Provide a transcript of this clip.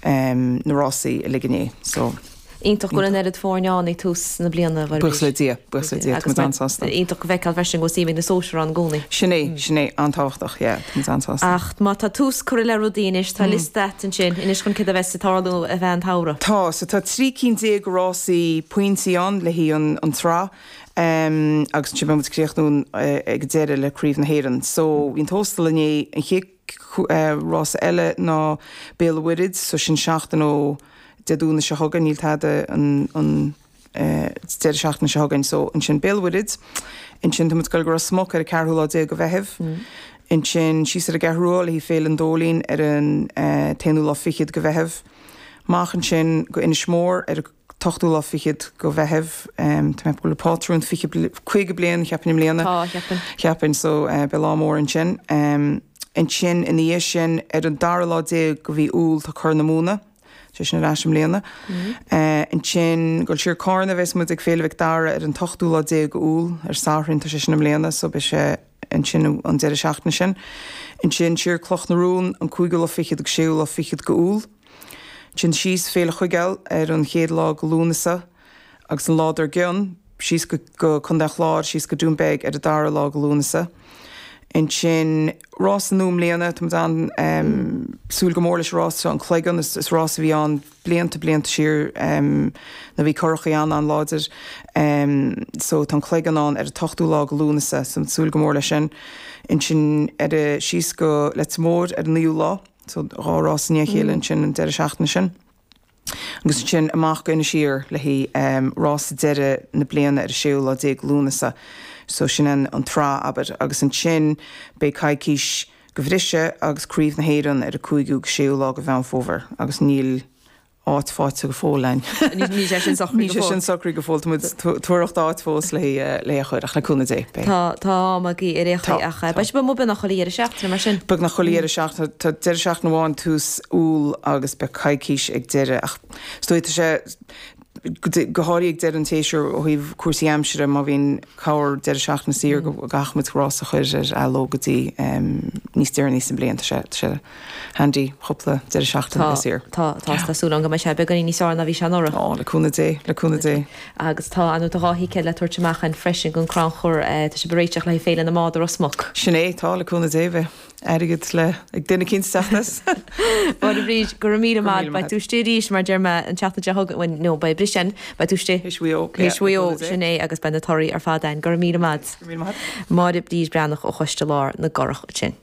na rásaí uilig inné so. Iontach go bhfuil an oiread foirne ann ag tús na bliana arís. Buíochas le Dia, buíochas le Dia, tá muid an-sásta. Iontach a fheiceáil freisin go bhfuil suim ag na sóisear ann i gcónaí. Sin é, sin é, an-tábhachtach, yeah, tá muid an-sásta. Ach má tá tús curtha le rudaí anois, tá liosta agat ansin anois chun céard a bheas ag tarlú i gcaitheamh an tsamhraidh. Tá, so tá trí cinn déag rásaí pointí ann, le haghaidh an tsraith, agus ansin beidh muid ag críochnú ag an deireadh le Craobh na hÉireann. So bhí an Tóstal inné, an chéad, Rás eile ná Béal an Mhuirthead, so sin seachtain ó Dé Domhnaigh seo chugainn, níl tada an deireadh seachtaine seo chugainn, so ansin Béal an Mhuirthead, ansin tá muid ag goil go Ros Muc ar an 4ú lá déag de Mheitheamh, ansin síos ar an gCeathrú Rua le haghaidh Féile an Dóilín ar an t-aonú lá fichead de Mheitheamh, amach ansin go Inis Mór ar an. t-ochtú lá fichead go Mheitheamh. Tá mé ag bualadh pátrún fiche, caoga bliain, cheapainn, i mbliana. Tá, cheapainn. Cheapainn, so beidh lá mór ansin. Ansin ina dhiaidh sin, ar an dara lá déag go mhí Iúil, tá Corr na Móna, sé sin ar ais i mbliana. Ansin, goil siar Carna, bheas muid ag Féile Mhic Dara ar an t-ochtú lá déag Iúil, ar an Satharn, tá sé sin i mbliana, so beidh sé ansin an deireadh seachtaine sin. Ansin, siar Cloch na Rón, an cúigiú lá fichead agus séú lá fichead go Iúil. Téann síos Féile Chuigéil ar an chéad lá go Lúnasa agus an lá dar gcionn síos go Contae an Chláir, síos go Dún Beag ar an dara lá go Lúnasa. Ansin rás nua i mbliana, tá muid ann, em, súil go mór leis an rás seo, an Cloigeann, is, is rás a bhí ann blianta, blianta siar, em, nuair a bhí curachaí an-an-láidir, em, so tá an Cloigeann ann ar an t-ochtú lá go Lúnasa, so súil go mór leis sin. Ansin ar a, síos go Leitir Móir ar an naoú lá. So, dhá rás i ndiaidh a chéile ansin an deireadh seachtaine sin. Agus ansin amach go Inis Oírr le haghaidh rás deireadh na bliana ar an séú lá déag Lúnasa. So, sin an an tsraith, abair. Agus ansin beidh coicís go bhriseadh agus Craobh na hÉireann ar an cúigiú agus séú lá de Mheán Fómhair. Agus níl. áit faighte go fóill ann. Níl sé sin socraithe go fóill. Níl sé sin socraithe go fóill. Tá muid ag tóraíocht áit fós le é a chur ach le cúnamh Dé, beidh. Tá am agaibh ar aon chaoi ach beidh sé beagnach chuile dheireadh seachtaine mar sin. Beagnach chuile dheireadh seachtaine. Tá deireadh seachtaine amháin tús Iúil agus beidh coicís ag deireadh ach is dóigh tá sé go háirithe ag deireadh an tséasúir ó thaobh cúrsaí aimsire má bhíonn corr deireadh seachtaine saor go gcaithfidh muid rás a chur ar athló go dtí níos deireanaí sa mbliain. Tá sé Handy cúpla deireadh seachtaine tá, saor. tá, tá, tá súil a'inn go mbeidh sé beagáinín níos fearr ná bhí sé anuraidh. Ó, le cúnamh Dé, le cúnamh Dé. Agus tá, nó tá dhá thicéad le tabhairt amach a'inn freisin gon crannchur eh, tá sé ag réiteach le haghaidh Féile na mBád i Ros Muc. Sin é, tá, le cúnamh Dé beidh airgead le, ag duine eicínt sa teach. Máire Bríd, go raibh míle maith, beidh tú istigh arís mar deir mé an tseachtain seo chugainn, bhuel no, beidh briseadh ansin, beidh tú istigh. Théis Mhaigh Eo, yeah, le cúnamh Dé. Théis Mhaigh Eo, sin é, agus beidh na torthaí ar fad a'inn, go raibh míle maith a'd. Go raibh míle maith a'd. Máire Bríd Breathnach ó Choiste Lár na gCurach ansin.